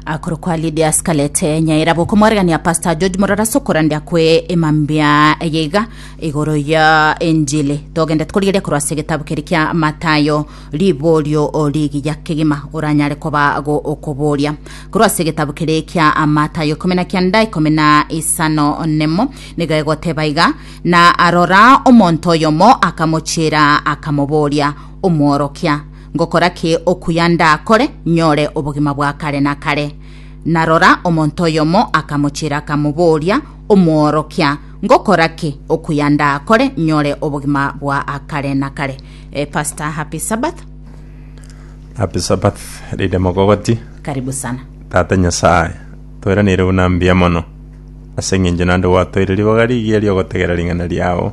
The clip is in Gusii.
akoro kwa Lydia Scarlett nyaira bokomwaregania Pastor George Morara sokorandia kwe emambia eye iga igoro ya enjili togende tukorigeria korwa ase egetabu keri kia Matayo riborio rigiya kegima oranyare koba go okoboria korwa ase egetabu keri kia Matayo ikomi na kianda ikomi na isano nemo nigo egoteba iga na arora omonto oyomo akamochiera akamoboria omworokia Ngokora ki okuya ndakore, nyore obogima bwa kare na kare? Na rora, omonto oyomo akamochiera akamoboria, Omworokia, ngokora ki okuya ndakore, nyore obogima bwa akare na kare? Eh, Pastor, happy Sabbath. Happy Sabbath, Rida Mogogoti. Karibu sana. Tata Nyasae, toiraneire buna mbuya mono. Ase eng'encho nande gwatoire ribaga rigiya riogotegera ring'ana riao.